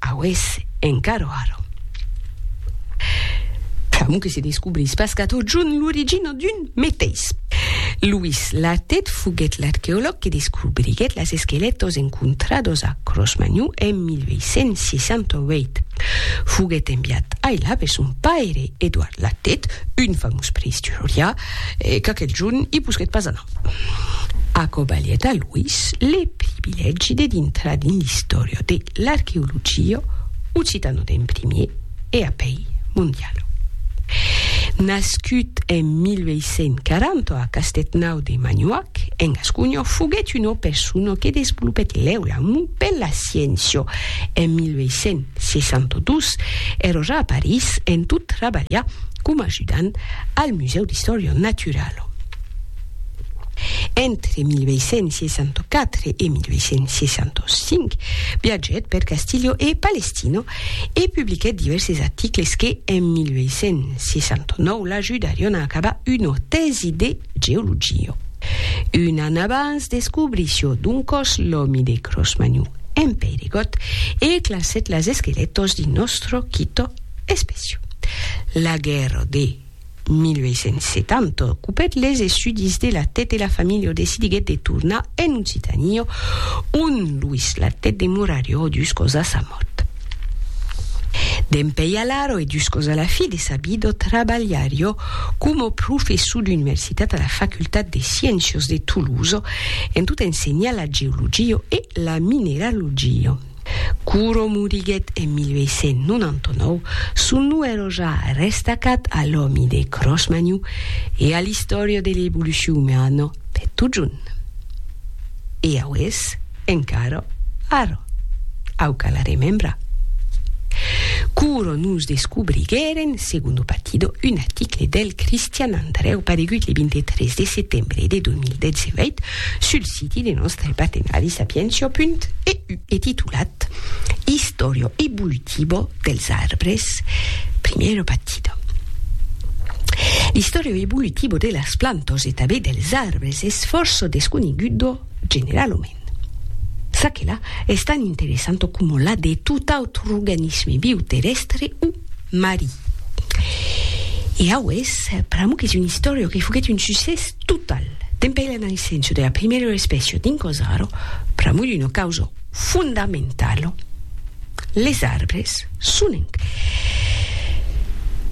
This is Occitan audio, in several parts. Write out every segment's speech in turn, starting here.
Aues encaro ara. Pr'amor que se descobrís pas qu'at au junt l'origina d'un meteis. Louis Latet foguèt l'arqueològ que descobriguèt las esquelètos encontrados a Cros-Magnou en 1868. Foguèt enviat ailà per son paire Edouard Latet, un famós preïsturiá, qu'aquel junt i posquèt pas anar. Aquò balhèt a Luís le privilègi de dintrar dins l'istòria de l'arqueologia occitano d'en primier e apèi mondiala. Nascut en 1840 a Castètnau de Manhuac, en Gasconha, foguèt una persona que desvolopèt lèu l'amor per la sciéncia. En 1862, èra ja a París en tot trabalhar coma ajudant al Musèu d'Istòria Naturala. Entre 1864 e 1865 viatgèt per Castilho e Palestino e publiquèt divèrses articles que, en 1869, l'ajudarion a acabar una tèsi de geologia. Un an abans descobrissió d'un còs l'òmi de Cro-Magnon en Peiregòt e classèt las esquelètos dins nòstre quito espècio. La guèrra de. 1870, copèt les estudis de Latet e la familha decidiguèt de tornar en Occitania, on Luís Latet demorarió juscòs a sa mòrt. Dempèi alara e juscòs a la fi de sa vida trabalharió coma professor d'universitat a la Facultat de Sciéncias de Tolosa en tot ensenhar la geologia e la mineralogia. Curo moriguèt en 1899, son nom èrò ja restacat a l'òmi de Cros-Magnon e a l'istòria de l'evolucion umana per totjorn. E aués encara arra, au cal arremembrar. Curo nos descobriguèren, Segundo Partido, un article del Cristian Andrèu paregut le 23 de setembre de 2018, Sul siti de nòstre patenari sapientia.eu e titulat Historio evolutivo dels arbres, primero pactido. L'historio evolutivo de las plantas e tanben dels arbres es fòrça desconegudo generalament. Ça que la, es tan interessanto coma la de tot autre organisme viu terrèstre o Marie. E aués, pr'amo qu'es un istòrio que foguèt un succès total. Dempèi la naissenço de la primèro espècio dins Cosaro, pr'amo d'una causa fondamentalo, les arbres son en.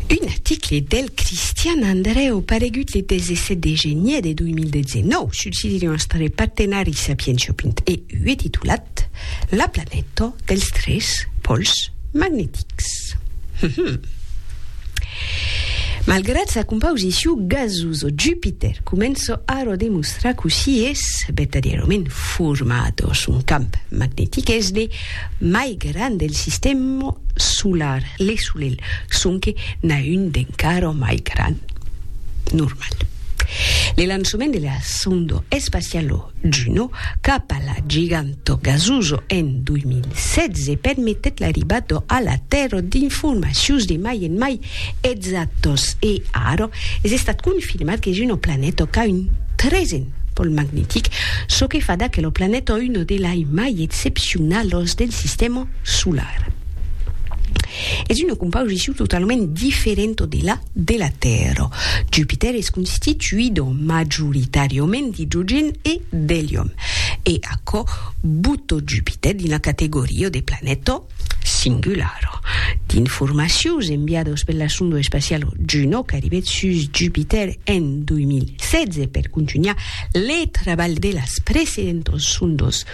Un article del Cristian Andrèu paregut le 17 de genier de 2019 sul site d'un astòric partenari Sapientiopint e ue titulat. Cat, la planeta dels tres pòls magnetics. Malgrat sa compausiciu gasosa, Jupiter comença ara a demostrar cossí es vertadièrament format. Son camp magnetic es de mai grand del sistèma solar, le Solelh, sonque n'a un d'encara mai grand. Normal. Le lançament de la sonda espaciala Juno cap a la Giganto Gasuso en 2016 permetèt l'arribada a la Tèrra d'informacions de mai en mai exactas e ara es estat confirmat qu'es una planeta qu'a un tresen pòl magnetic, çò que fa d'aquela planeta una de lai mai excepcionalas del sistèma solar. Es una composicion totalament diferenta de la. de la Tèrra. Jupitèr es constituido majoritàriament d'idrogèn e d'elium. E aquò bota Jupitèr dins la categoria de planeta singular. D'informacions enviadas per la sonda espaciala Juno qu'arribèt sus Jupitèr en 2016 per contunhar le trabalh de las precedentas sondas